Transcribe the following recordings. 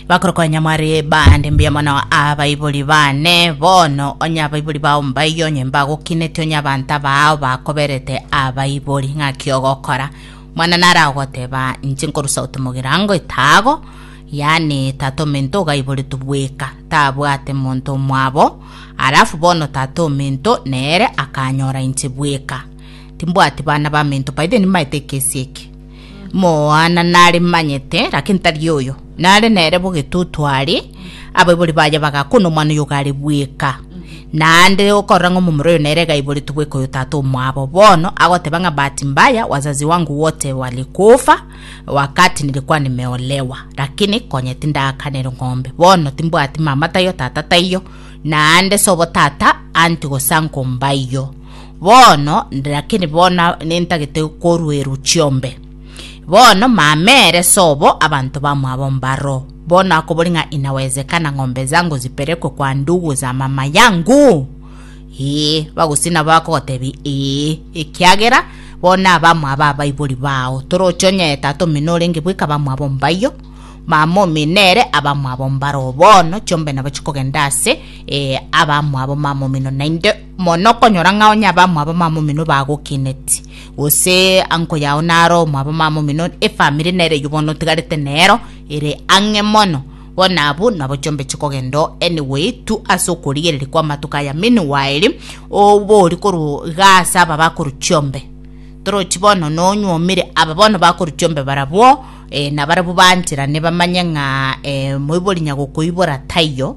bakoroka nyamwari bande mbuya mono abaibori bane bono onye abaibori bao mbayi onye mbagokinete onye abanto abao bakoberete abaibori ng'aki ogokora mwana nara ogoteba inche nkorusa gote mogirango etago yani tata omento ogaiboretwe bweka tabwate monto omwabo alafu bono tata omento nere akanyora inche bweka timbwati bana bamento by then maete ekesi eke Moana naremanyete, lakini tari oyo. Nare nere bo getutu are, abaibori baye bagakuna omwana oyo gare bweka. Naende okorora ng'a omomura oyo nere gaiboretwe bweka oyo tata omwabo. Bono agoteba ng'a bahati mbaya wazazi wangu wote walikufa wakati nilikuwa nimeolewa, lakini konya tindakanera ng'ombe. Bono timbwati mama taiyo tata taiyo, naende sobo tata anti gose anko mbaiyo. Bono, lakini bono nintagete koruerwa chiombe. Bono, mama ere sobo, abanto bamwabo mbaro. Bono akobori ng'a inawezekana ng'ombe zangu zipelekwe kwa ndugu za mama yangu? Ee. Bagosii nabo bakogotebi, Ee, ekiagera bono abamwabo abaibori bao. Toroche onye tata omino orenge bweka abamwabo mbaiyo, mama omino ere abamwabo mbaro. Bono chiombe nabo chikogenda ase eh, abamwabo mama omino naende Mono okonyora ng'a onye abamwabo mamomino bagokineti, gose anko yao naro omwabo mamomino, efamiri nere eyio bono otigarete nero ere ang'e mono. Bono abwo nabo chiombeche kogenda anyway tu ase okorigereria kw'amatuko aya meanwhile obori korwa igaa ase aba bakorwa chiombe torochi bono nonyuomire aba bono bakorwa chiombe barabwo nabarabwo baancherane bamanye ng'a moibori nyagokoibora taiyo.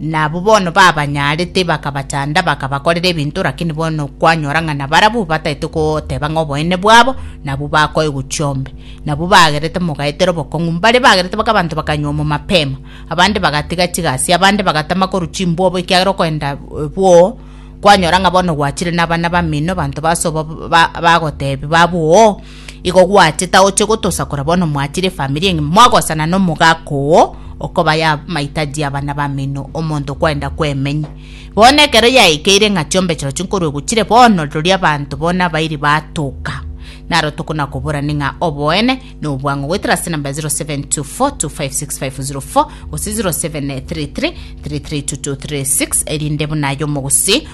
na abwo bono babanyaarete bakabachanda bakabakorera ebinto, lakini bono kwanyora ng'a nabarabwo bataete goteba ng'a oboene bwabo nabwo bakoegwa chiombe. Nabwo bagerete mogaetera obokong'u, mbare bagerete mpaka abanto bakanywa omo mapema, abande bagatiga chigasi, abande bagatama korwa chimbwobo ekiagera okoenda bwoo, kwanyora ng'a bono gwachire nabana bamino, abanto basobo ba- ba- bagotebi babwo oo. Igo gwaache taoche gotosakora bono mwachire efamiri engima mwagosana na omogaka oo okobaya amahitaji abana bamino omonto okwenda kwemenya. Bono ekero yaekeire ng'a chiombe chirochio nkorwe gochire bono rori abanto bono abairi batoka. Naro tokona koborani ng'a oboene na obwang'u goetera ase namba 0724256504 gose 0733332236 erinde buna aye omogusii